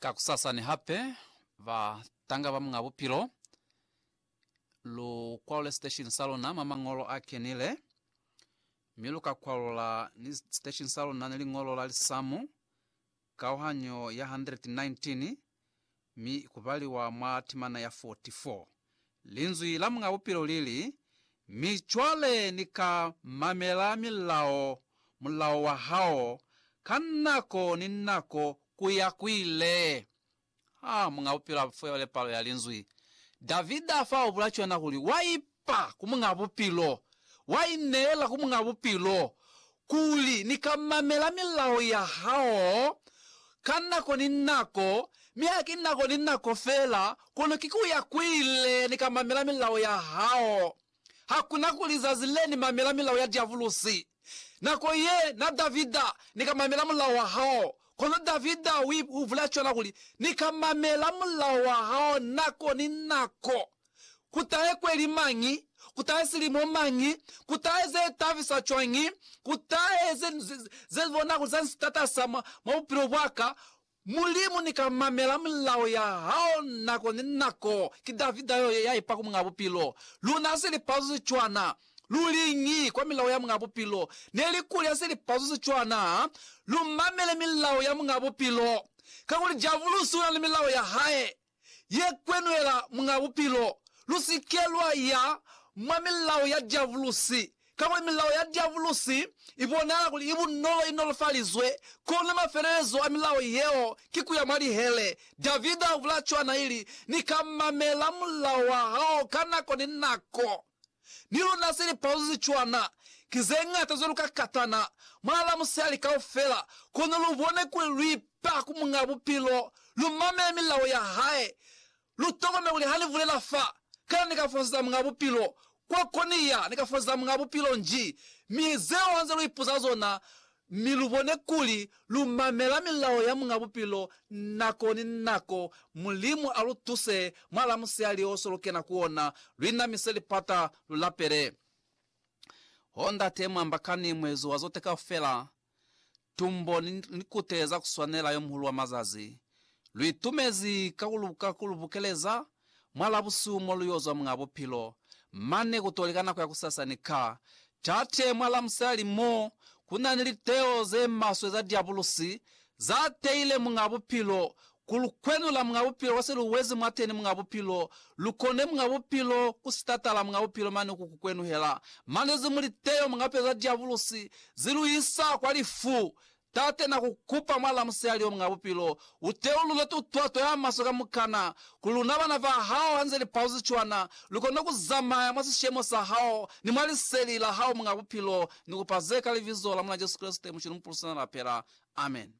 Kakusasa ni hape ba tanga ba Muñ'a Bupilo lu kwalule siteshini sa luna mwa mañolo a kenile, mi lu ka kwalula ni siteshini sa luna ni liñolo la lisamu, kauhanyo ya 119, mi ku baliwa mwa timana ya 44. Linzwi la Muñ'a Bupilo li li, Mi cwale ni ka mamela milao, mulao wa hao, ka nako ni nako ku ya ku ile. Ha Muñ'a Bupilo a fole palo ya Linzwi, Davida fa ubula cwana kuli, Wa ipa! pa ku Muñ'a Bupilo, wa ineela ku Muñ'a Bupilo, kuli ni ka mamela milao ya hao ka nako ni nako, mi haki nako ni nako fela, kono ki ku ya kuile ni ka mamela milao ya hao. Hakuna kuli zazi le ni mamela milao ya diabulosi. Nako ye na Davida, ni ka mamela mulao wa hao. Kono Davida u bulela cwana kuli, Ni ka mamela mulao wa hao nako ni nako. Ku tahe kweli mañi? Ku tahe silimo mañi? Ku tahe ze tabisa cwañi? Ku tahe ze, ze, ze bona kuli za nsi tatasa mwa, mwa bupilo bwaka. Mulimu, ni ka mamela mulao ya Hao nako ni nako. Ki Davida yo, ya ipa ku Muñ'a Bupilo. Luna ha si li pazuzi cwana. Lu liñi kwa milao ya Muñ'a Bupilo? Neli kuli ha si li pazuzi cwana, ha lu mamele milao ya Muñ'a Bupilo. Kakuli Diabulusi una ni milao ya hae. ye kwenwela mwa bupilo, lu si ke lwa ya mwa milao ya diavulusi, kakuli milao ya diavulusi i bonahala kuli i bunolo, i nolofalizwe. Kono mafelelezo a milao yeo ki ku ya mwa lihele. Davida a bula cwana, ili, Ni ka mamela mulao wa hao ka nako ni nako. Ni luna se lipauzo ze cwana ki ze ñata cwalo ka katana mwa la musali kaufela, kono lu bone kuli lu ipa ku Muñ'a Bupilo, lu mamele milao ya hae, lu tokomele kuli ha ni bulela fa, kana ni ka fosetsa Muñ'a Bupilo, kwa ko ni ya, ni ka fosetsa Muñ'a Bupilo nji, mi zeo ha nze lu ipuza zona, mi lu bone kuli lu mamela milao ya Muñ'a Bupilo nako ni nako. Mulimu a lu tuse mwa lamusihali o so lu kena ku ona, lu inamise lipata, lu lapele. Oh, Ndate, mu ambakani muezo wa zote kaufela, tumbo ni likute za ku swanela yo muhulu wa mazazi. Lu itumezi ka ku lu bukeleza, Mwa Labusumo lu y'o zwa Muñ'a Bupilo mane ku t'o li ka nako ya kusasani ka Tate mwa Lamusali mo ku na ni liteo ze maswe za Diabulusi za teile Muñ'a Bupilo, ku lu kwenula Muñ'a Bupilo kwa se lu wezi mwateni Muñ'a Bupilo, lu kone Muñ'a Bupilo ku sitatala Muñ'a Bupilo mane ku ku kwenuhela mane ze mu liteo mwa pe za Diabulusi zi lu isa kwa lifu Tate, na ku kupa mwa lamusiali yo mw'a bupilo, u teulule tutwa to ya maswe kamukana, kuli luna bana ba Hao, ha nze li pauzi cwana, lu kone ku zamaya mwa sishemo sa Hao ni mwa Liseli la Hao, Muñ'a Bupilo. Ni kupa ze ka Libizo la Muñ'a Jesu Kreste, Mucili Mupulu Sina Lapela. Amen.